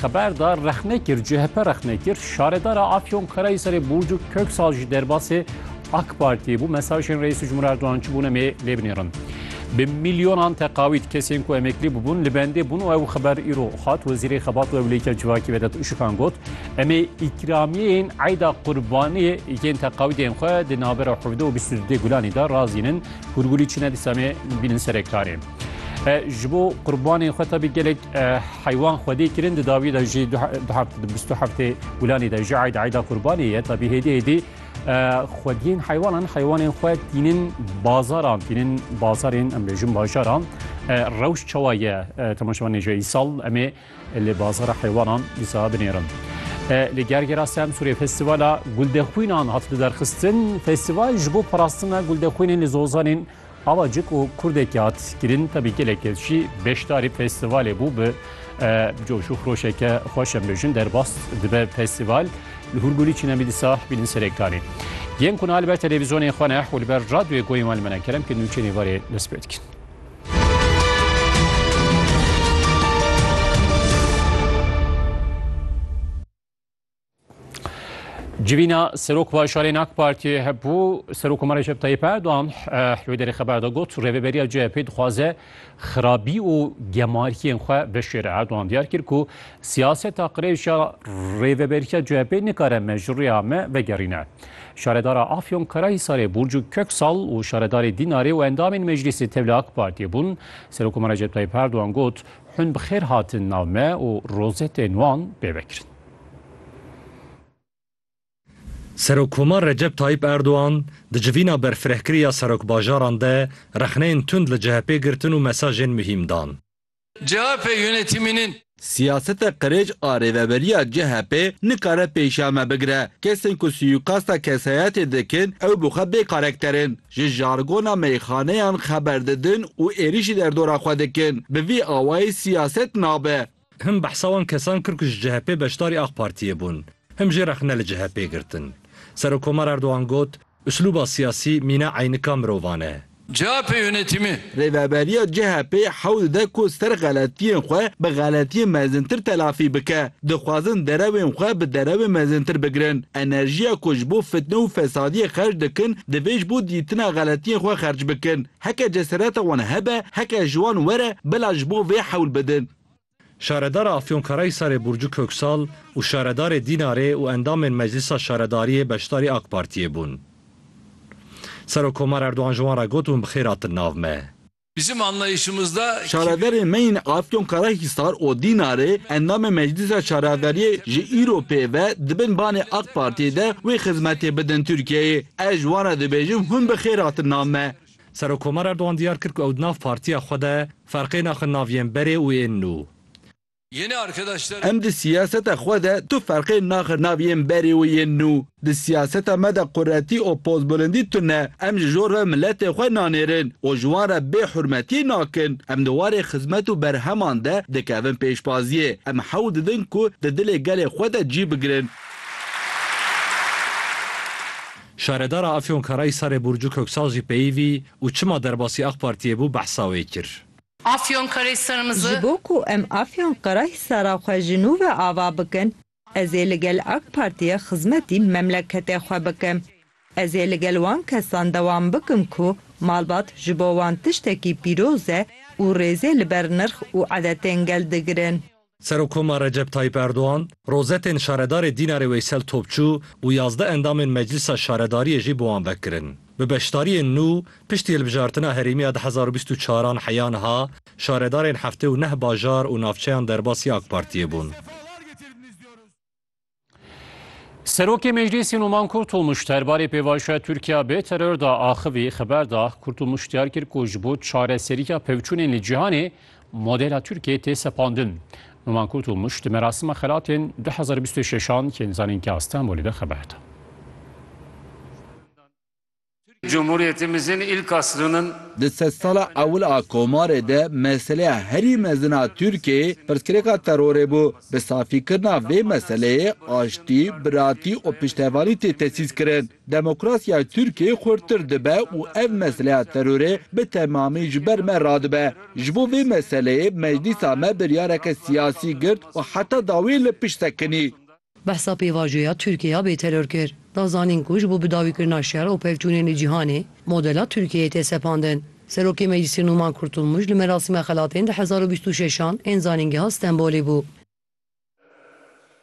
Xeber da rexne kir CHP rexne kir şaredara Afyon Karahisarê Burcu Köksal jî derbasê AK Partiyê bû mesajên Reis Cumhur Erdoğan çi bûne mê lêbinêrin. Bi milyonan teqawît kesên ku emeklî bûbûn li bendê bûn û ew xeber îro hat Wezîrê Xebat û Ewlêkîya Civakî Vedat Uşikan got emê îkramiyeyên eyda qurbaniyê yên teqawîdên xwe di navbera hevdeh û bîst û dudê gulanî de razînin hûrgûlî çine dîsa mê bînin serektarê. ji bo qurbanên xwe tabi gelek heywan xwedê kirin di dawî de jî bîstu heftê gulanê de ji eyda eyda qurbanê ye tabi hêdî hêdî xwediyên heywanan heywanên xwe tînin bazaran tînin bazarên em bêjin bajaran rewş çawa ye temaşevanê ji îsal em ê lê bazara heywanan îsa binêrin. Li gergera Semsurê festivala guldexwînan hat li derxistin festival ji bo parastina guldexwînên li zozanên Ava cî ku kurdekî hat kirin tevî gelekê jî beşdarî festîvalê bû bi coş û xroşeke xweş em bêjin derbas dibe festîval. Li Hûrgûlî çîne mî dîsa bînin serê kanê. Yên ku niha li ber televîzyonên xwe ne û li ber radyoyê goyên wan li me ne kerem ke nûçeyên êvarê dest pê dikin. Civîna Serok Bajarên AK Partiyê hebû Serokkomarê Recep Tayyip Erdogan wê derê xeber de got rêveberiya CHP dixwaze xirabî û gemariyên xwe bişêre. Erdogan diyar kir ku siyaseta qirêja rêveberiya CHP nikare me ji rêya me vegerîne. Şaredara Afyon Karahisarê Burcu Köksal û şaredarê Dînarê û endamên meclîsê tevli AK Partiyê bûn. Serokkomarê Recep Tayyip Erdogan got Hûn bi xêr hatin nav me û rozetên wan pê vekirin. Serokkomar Recep Tayyîp Erdogan di civîna berfirehkirî ya serokbajaran de rexneyên tund li CHPê girtin û mesajên muhîm dan. CHP yönetiminin. Siyaseta qirêj a rêveberiya CHPê nikare pêşiya me bigire. Kesên ku suyîkasta kesayetê dikin ew bi xwe bê karekter in. ji jargona meyxaneyan xeber didin û êrîşî derdora xwe dikin. Bi vî awayî siyaset nabe. Him behsa wan kesan kir ku ji CHP'ê beşdarî Ak Partiyê bûn, him jî rexne li CHP'ê girtin. Serokkomar Erdogan got, Uslûba siyasî mîna eynika mirovan e. CHP yonetîmê Rêveberiya CHP'ê hewl dide ku ser xeletiyên xwe bi xeletiyên mezintir telafî bike. Dixwazin derewên xwe bi derewên mezintir bigirin. Enerjiya ku ji bo fitne û fesadiyê xerc dikin divê ji bo dîtina xeletiyên xwe xerc bikin. Heke cesereta wan hebe, heke ji wan were bila ji bo vê hewl bidin. Şaredara Afyonkarahisarê Burcu Köksal û şaredarê Dînarê û endamên Meclisa Şaredariyê beşdarî AK Partiyê bûn. Serokkomar Erdogan ji wan re got Hûn bi xêr hatin nav me. Bizim anlayışımızda Şaredarên me yên Afyonkarahisar û Dînarê, endamên Meclisa Şaredariyê ji îro pê ve di bin banê AK Partiyê de wê xizmetê bidin Tirkiyeyê. Ez ji wan re dibêjim Hûn bi xêr hatin nav me. Serokkomar Erdogan diyar kir ku ew di nav partiya xwe de ferqê naxin nav yên berê û ên nû. Em di siyaseta xwe de tu ferqê naxin nav yên berê û yên nû. Di siyaseta me de quretî û pozbilindî tune. Em ji jor ve miletê xwe nanêrin û ji wan re bêhurmetiyê nakin. Em di warê xizmet û berheman de dikevin pêşbaziyê. Em hewl didin ku di dilê gelê xwe de cî bigirin. Şaredara Afyonkarayî Sare Burcu Köksal jî peyivî û çima derbasî AK Partiyê bû behsa wê kir. Afyonkarayî Ji Sarmızı. bo ku em Afyonkarahisara xwe ji nû ve ava bikin, ez ê li gel AK Partiyê xizmetî memleketê xwe bikim. Ez ê li gel wan kesan dewam bikim ku malbat ji bo wan tiştekî pîroz e û rêzê li ber nirx û edetên gel digirin. Serokkoma Recep Tayyîp Erdogan, rozetên şaredarê Dînarê Weysel Topçu û yazdeh endamên Meclîsa Şaredariyê jî bi wan ve kirin. Bi beşdariyên nû, piştî hilbijartina herêmî ya du hezar û bîst û çar an heya niha, şaredarên heftê û neh bajar û navçeyan derbasî AK Partiyê bûn. Serokê Meclîsî Numan Kurtulmuş derbarê pêvajoya Tirkiya bê teror da axivî xeber da. Kurtulmuş diyar kir ku ji bo çareseriya pevçûnên li cîhanê modela Tirkiyeyê tê sepandin. Numan Kurtulmuş di merasima xelatên 2026 an yên zanînkîya Stenbolê de xeber da. Cumhuriyetimizin ilk asrının. Di sedsala ewil a komarê de meseleya herî mezin a Tirkiyeyê pirsgirêka terorê bû. Bi safîkirina vê meseleyê aştî, biratî û piştevanî tê tesîskirin. Demokrasiya Tirkiyeyê xurttir dibe û ev meseleya terorê bi temamî ji ber me radibe. Ji bo vê meseleyê meclîsa me biryareke siyasî girt û heta dawiyê li pişt sekinî. Behsa pêvajoya Tirkiyeya bêteror kir, da zanîn ku ji bo bi dawî kirina şer û pevçûnên li cîhanê, modela Tirkiyeyê tê sepandin. Serokê Meclîsê Nûman Kurtulmuş li merasîma xelatên di hezar û bîst û şeş an ên Zanîngeha Stenbolê bû.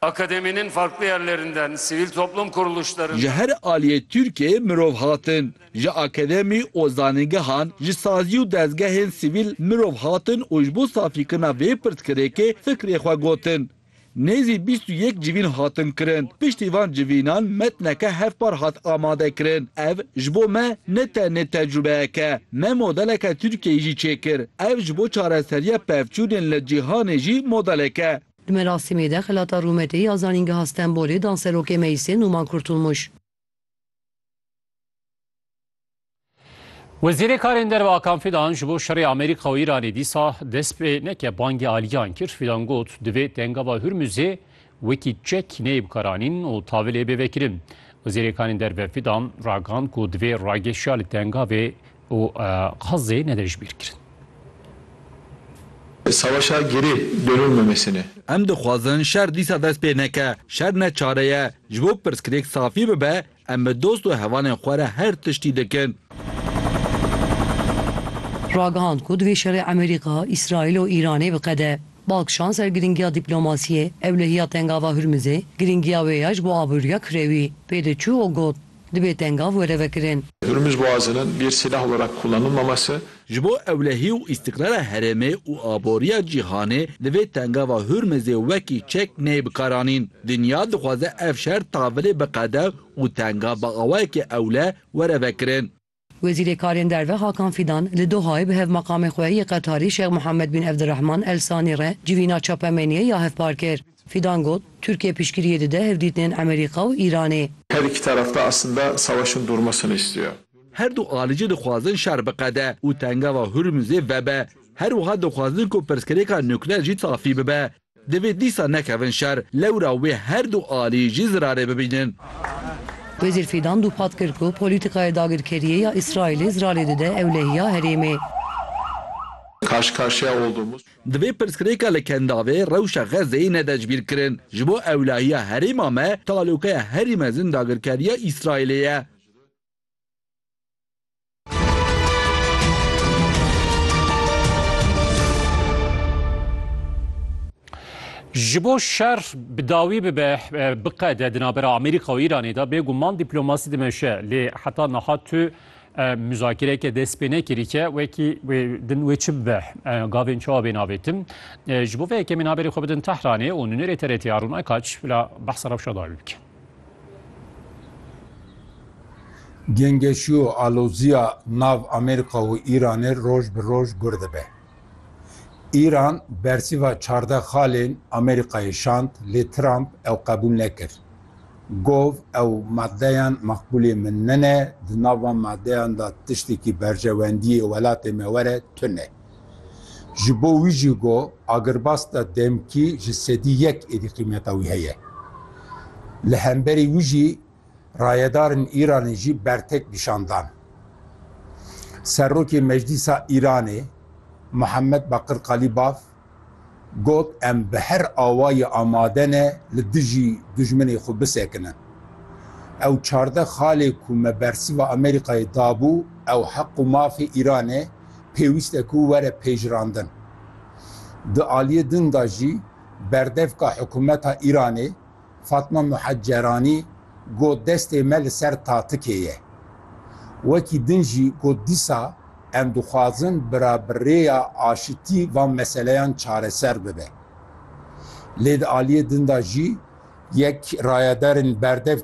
Akademinin farklı yerlerinden, sivil toplum kuruluşlarından. Ji her aliyê Tirkiyeyê mirov hatin, ji akademî û zanîngehan, ji sazî û dezgehên sivîl mirov hatin û ji bo safîkirina vê pirsgirêkê fikrê xwe gotin. Nêzî bîst û yek civîn hatin kirin. Piştî van civînan metneke hevpar hat amadekirin. Ev ji bo me ne tenê tecrûbeyek e. Me modeleke Tirkiyeyê jî çêkir. Ev ji bo çareseriya pevçûnên li cîhanê jî modelek e. Di merasîmê de xelata rûmetê ya Zanîngeha Stenbolê danserokê Meyse Nûman Kurtulmuş, Wezîrê Karên Derve Akan Fidan ji bo şerê Amerîka û Îranê dîsa dest pê neke bangê aliyan kir. Fidan got divê tengava Hurmuzê wekî çek neyê bikaranîn û tavilê bê vekirin. Wezîrê Karên Derve Fidan ragand ku divê rageşiya li tengavê û qazê ne de ji bîr kirin. Savaşa gerê döno memesine. Em dixwazin şer dîsa dest pê neke. Şer ne çare ye. Ji bo pirsgirêk safî bibe, em bi dost û hevalên xwe re her tiştî dikin. Ragihand ku divê şerê Emerîka, Îsraîl û Îranê biqede. Balkişand ser girîngiya dîplomasiyê, ewlehiya Tengava Hurmizê, girîngiya wê ya ji bo aboriya kirewî, pê diçû û got, Dibê tengav were vekirin. Durmuş Boğazı'nın bir silah olarak kullanılmaması, Ji bo ewlehî û îstiqrara herêmê û aboriya cîhanê li vê tengava Hurmizê wekî çek neyê bikaranîn. Dinya dixwaze ev şer tavilê biqede û tengav bi awayekî ewle were vekirin. Wezîrê Karên Derve Hakan Fîdan li Dohayê bi hevmaqamê xwe yê Qetarî Şêx Muhammed Bin Evdirehman El Sanî re civîna çapemeniyê ya hevpar kir. Fîdan got, Tirkiye piştgiriyê dide hevdîtinên Emerîka û Îranê. Her iki taraf da eslinda savaşın durmasını istiyo. Her du alijî dixwazin şer biqede û tengava Hurmuzê vebe. Her wiha dixwazin ku pirsgirêka nukleer jî safî bibe. Divê dîsa nekevin şer, lewra wê her du alî jî zirarê bibînin. Wezîr Fîdan dûpat kir ku polîtîkaya dagirkeriyê ya Îsraîlê zirarê dide ewlehiya herêmê. Divê pirsgirêka li Kendavê rewşa Xezzeyê nede ji bîr kirin. Ji bo ewlehiya herêma me talokeya herî mezin dagirkeriya Îsraîlê ye. Ji bo şer bi dawî bibe biqede di navbera Amerîka û Îranê de bêguman dîplomasî dimeşe lê heta niha tu muzakireke dest pê nekirîke wekî din wê çi bibe gavên çawa bên avêtin ji bo vê yekemîn haberê xwe bidin Tehranê û nûnerê TRT'a Rûna Kaç bila behsa rewşa dawî bikin. Gengeşî û aloziya nav Amerîka û Îranê roj bi roj gur dibe. Îran bersîva çardeh xalên Amerîkayê şand lê Trump ew qebûl nekir. Gov ew madeyan maqbûlê min nine, di nav van madeyan de tiştekî berjewendiyê welatê me were tune. Ji bo wî jî got, Agirbas de demkî ji sedî yek êdî qîmeta wî heye. Li hemberî wî jî rayedarên Îranê jî bertek nîşan dan. Serokê Meclîsa Îranê Muhammed Bakir Kalîbaf Got, Em bi her awayê amade ne li dijî dijminê xwe bisekinin. Ew çardeh xalê ku me bersiva Amerîkayê dabû ew heq û mafê Îran e, pêwîst e ku were pejirandin. Di aliyê din de jî berdevka hikûmeta Îranê Fatma Muheceranî got destê me li ser tatikê ye. Wekî din jî got dîsa em dixwazin bi ra bi rêya aşitî van meseleyan çareser bibe. Lê di aliyê din de jî yek rayedarên berdev